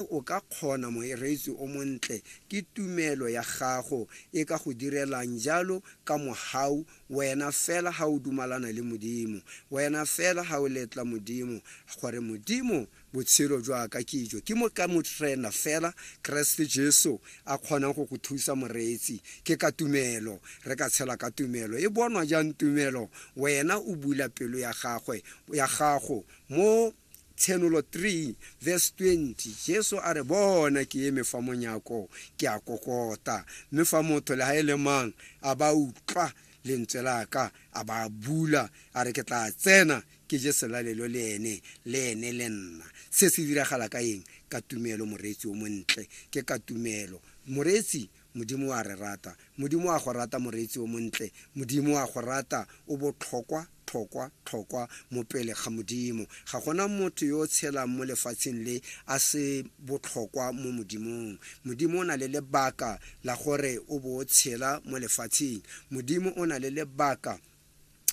Mme o ka kgona, moreetsi o montle, ke tumelo ya gago e ka go direlang jalo ka mohau, wena fela ha o dumalana le Modimo, wena fela ha o letla Modimo, gore, Modimo, botshelo jwa ka ke jo, ke mo ka Morena fela, Keresete Jesu, a kgonang go go thusa, moreetsi. Ke ka tumelo. Re ka tshela ka tumelo. E bonwa jang tumelo? Wena o bula pelo ya gagwe, ya gago, mo. Tshenolo 3 verse 20 Jesu a re bona ke eme fa monyako ke a kokota mme fa motho le ha e le mang a ba utlwa lentswe la ka a ba bula a re ke tla tsena ke je selalelo le ene le ene le nna se se diragala ka eng ka tumelo moreetsi o montle ke ka tumelo moreetsi Modimo o a re rata. Modimo o a go rata, moreetsi o montle. Modimo o a go rata. O botlhokwa, tlhokwa, tlhokwa mo pele ga Modimo. Ga gona motho yo o tshelang mo lefatsheng le a se botlhokwa mo Modimong. Modimo o na le lebaka la gore o bo o tshela mo lefatsheng. Modimo o na le lebaka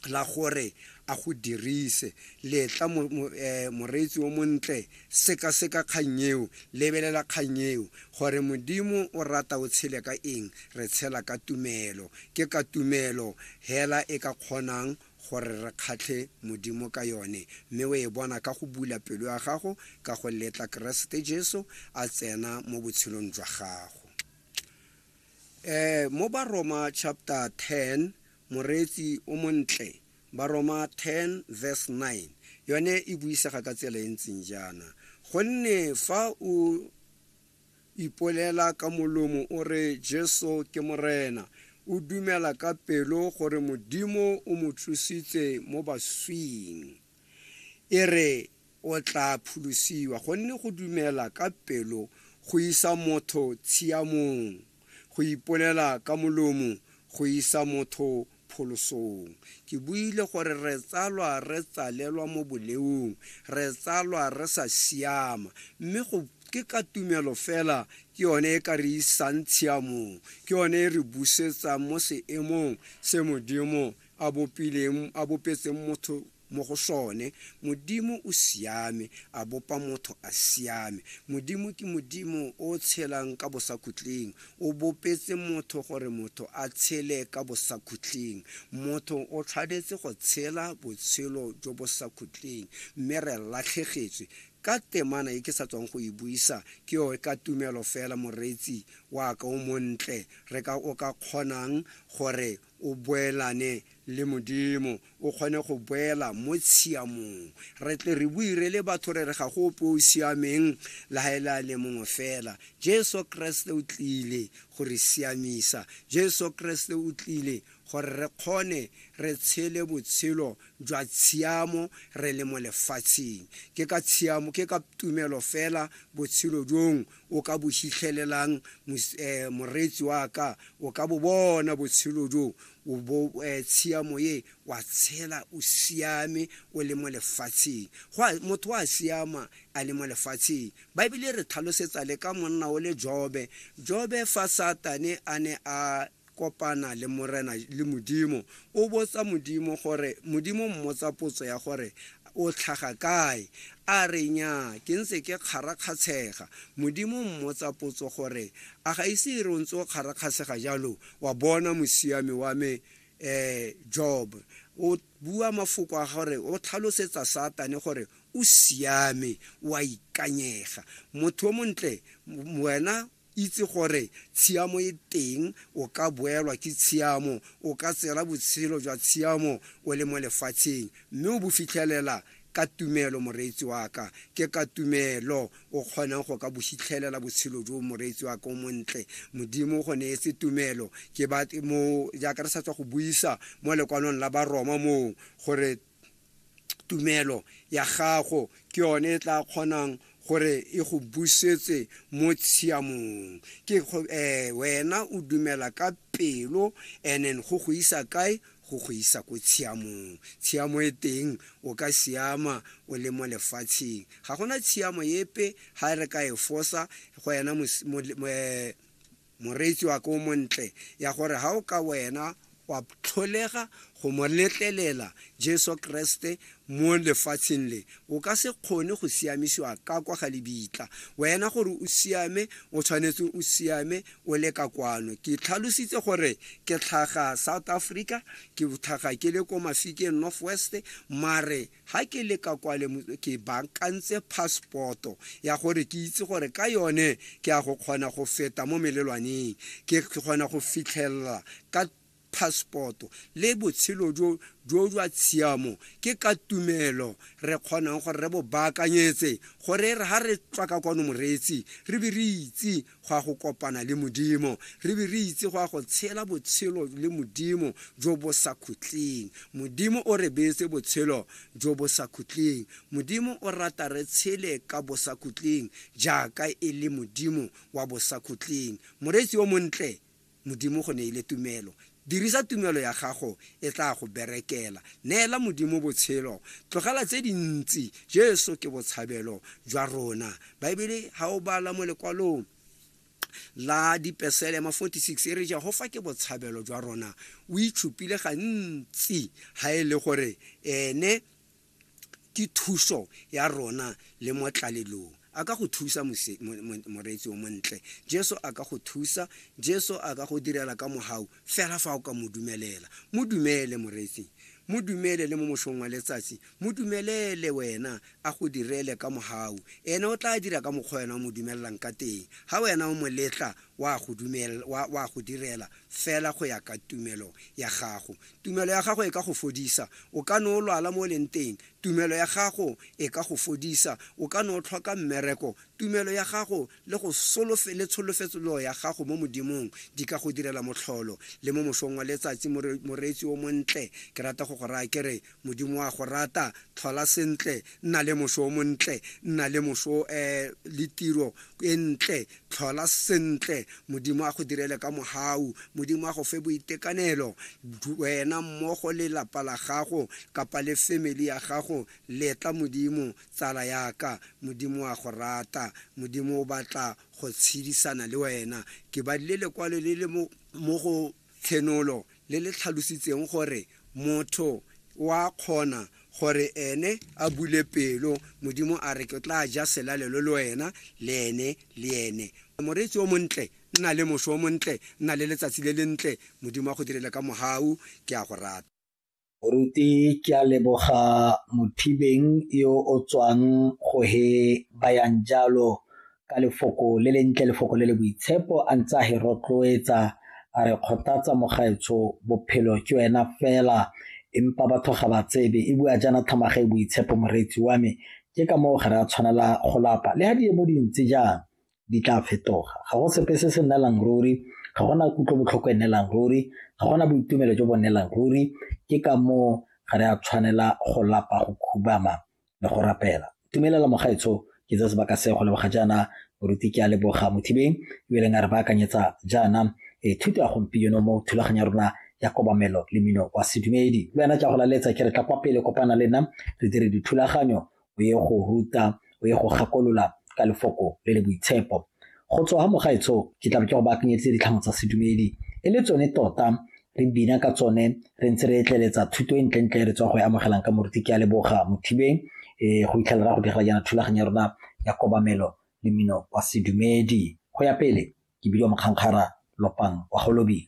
la gore a go dirise letla moreetsi o montle sekaseka kgang eo lebelela kgang eo gore modimo o rata o tshele ka eng re tshela ka tumelo ke ka tumelo hela e ka kgonang gore re kgatlhe modimo ka yone mme o e bona ka go bula pelo ya gago ka go letla keresete jesu a tsena mo botshelong jwa gago um mo baroma chapter 10 Moreetsi o montle, Baroma 10 verse 9, yone e buisega ka tsela e ntseng jaana, Gonne fa o ipolela ka molomo o re Jesu ke Morena, o dumela ka pelo gore Modimo o mo tsositse mo baswing. E re o tlaa pholosiwa, gonne go dumela ka pelo go isa motho tshiamong, go ipolela ka molomo go isa motho pholosong. Ke buile gore re tsalwa re tsalelwa mo boleong, re tsalwa re sa siama, mme go ke ka tumelo fela ke yone e ka re isang tshiamong, ke yone e re busetsang mo seemong se Modimo a bopileng a bopetseng motho mo go sone modimo o siame a bopa motho a siame modimo ke modimo o tshelang ka bosakhutleng o bopetse motho gore motho a tshele ka bosakhutleng motho o tshwanetse go tshela botshelo jo bosakhutleng mme re latlhegetswe ka temana e ke sa tswang go e buisa ke yo ka tumelo fela moreetsi wa ka o montle re ka o ka kgonang gore O boelane le Modimo, o kgone go boela mo tshiamong. Re tle re bue re le batho re re ga go ope o o siameng le ga e le a le mongwe fela. Jesu Keresete o tlile go re siamisa. Jesu Keresete o tlile gore re kgone re tshele botshelo jwa tshiamo re le mo lefatsheng. Ke ka tshiamo, ke ka tumelo fela botshelo jong o ka bo hitlhelelang moreetsi wa ka o ka bo bona botshelo jo o bo tshiamo ye wa tshela o siame o le mo lefatsheng motho a siama a le mo lefatsheng baebele re tlhalosetsa le ka monna o le jobe jobe fa satane a ne a kopana le Morena le Modimo, o botsa Modimo gore, Modimo o mmotsa potso ya gore, O tlhaga kae? A re, Nnyaa, ke ntse ke kgarakgatshega. Modimo o mmotsa potso gore, A ga ise e re o ntse o kgarakgatshega jalo, wa bona mosiami wa me Job? O bua mafoko a gore o tlhalosetsa Satane gore o siame, o a ikanyega, motho o montle, wena Itse gore tshiamo e teng, o ka boelwa ke tshiamo, o ka tsela botshelo jwa tshiamo o le mo lefatsheng, mme o bo fitlhelela ka tumelo, moreetsi wa ka. Ke ka tumelo o kgonang go ka bo fitlhelela botshelo jo, moreetsi wa ka o montle. Modimo o go neetse tumelo. Ke ba mo, jaaka re sa tswa go buisa mo lekwanong la Baroma moo, gore tumelo ya gago ke yone e tla kgonang gore e go busetse mo tshiamong ke go- eh, wena o dumela ka pelo and then go go isa kae go go isa ko tshiamong tshiamo e teng o ka siama o le mo lefatsheng ga gona tshiamo epe ga re ka e fosa go yena mos- mo- mo- eh, Moreetsi wa ka o montle ya gore ga o ka wena wa tlholega go mo letlelela Jesu Kreste mo lefatsheng le, o ka se kgone go siamisiwa ka kwa ga lebitla. Wena gore o siame, o tshwanetse o siame o le ka kwano. Ke tlhalositse gore ke tlhaga South Africa, ke tlhaga ke le ko Mafikeng North West, mare Ga ke le ka kwale ke baakantse passport-o ya gore ke itse gore ka yone ke ya go kgona go feta mo melelwaneng, ke kgona go fitlhelela ka passport-o le botshelo jo jo jwa tshiamo ke ka tumelo re kgonang gore re bo baakanyetse gore e re ga re tswa ka kwano moreetsi re be re itse go ya go kopana le modimo re be re itse go ya go tshela botshelo le modimo jo bo sa khutleng modimo o re beetse botshelo jo bo sa khutleng modimo o rata re tshele ka bosa khutleng jaaka e le modimo wa bosa khutleng moreetsi o montle Modimo go neile tumelo. Dirisa tumelo ya gago, e tlaa go berekela. Neela Modimo botshelo. Tlogela tse dintsi. Jesu ke botshabelo jwa rona. Baebele, ha o bala mo lekwalong la Dipeselema 46, e re Jehofa ke botshabelo jwa rona. O itshupile gantsi ha e le gore Ene Ke thuso ya rona le mo tlalelong. A ka go thusa mose- mo- mo- moreetsi o montle. Jesu a ka go thusa. Jesu a ka go direla ka mogau fela fa o ka mo dumelela. Mo dumele moreetsing. Mo dumele le mo mosong wa letsatsi. Mo dumelele wena a go direle ka mogau. Ene o tla dira ka mokgwa wena o mo dumelelang ka teng. Ha wena o mo letla wa go dumel- wa- wa go direla fela go ya ka tumelo ya gago. Tumelo ya gago e ka go fodisa. O ka ne o lwala mo o leng teng. Tumelo ya gago e ka go fodisa. O ka ne o tlhoka mmereko. Tumelo ya gago le go solofe, le tsholofetslo ya gago mo Modimong di ka go direla motlholo. Le mo mosong wa letsatsi, more, moreetsi o montle, ke rata go go raya ke re, Modimo o a go rata. Tlhola sentle. Nna le moso o montle. Nna le moso, eh, le tiro e ntle. Tlhola sentle, Modimo a go direle ka mogau. Modimo a go fe boitekanelo, wena mmogo le lapa la gago kapa le family ya gago. Letla Modimo, tsala yaka. Modimo a go rata. Modimo o batla go tshedisana le wena. Ke badile lekwalo le le mo go Tshenolo le le tlhalositseng gore motho o a kgona gore ene a bule pelo, Modimo a re ke tla ja selalelo le wena le ene le ene. Moreetsi o montle, nna le moso o montle, nna le letsatsi le lentle, Modimo a go direle ka mohau, ke a go rata. Moruti ke a leboga Mothibeng yo o tswang go he bayang jalo ka lefoko le le ntle lefoko le le boitshepo a ntse a he rotloetsa a re kgothatsa mogaetsho bophelo ke wena fela empa batho ga ba tsebe e bua jaana thamaga e boitshepo moreetsi wa me ke ka moo ga re a tshwanela go lapa le ga di mo dintsi jang di tla fetoga ga go sepe se se nnelang ruri ga gona kutlobotlhoko e nnelang ruri ga gona boitumelo jo bo nnelang ruri ke ka moo ga re a tshwanela go lapa go khubama le go rapela tumelela mogaetsho ke tse sebaka se go leboga jaana boruti ke a leboga mothibeng ebeleng a re baakanyetsa jaana e thuto ya gompieno mo thulaganyo ya rona ya kobamelo le mino wa sedumedi le wena tla go laletsa ke re tla kwa pele kopana le nna re dire dithulaganyo o ye go ruta o ye go gakolola ka lefoko le le boitshepo go tswa ga mogaetsho ke tla ke go baakanyetse ditlhamo tsa sedumedi e le tsone tota re bina ka tsone re ntse re etleletsa thuto e ntlentle re tswa go e amogelang ka moruti ke a leboga mothibeng um go itlhelela go dira jaana thulaganyo ya rona ya kobamelo le mmino wa sedumedi go ya pele ke bidiwa mokgankgara lopang wa golobile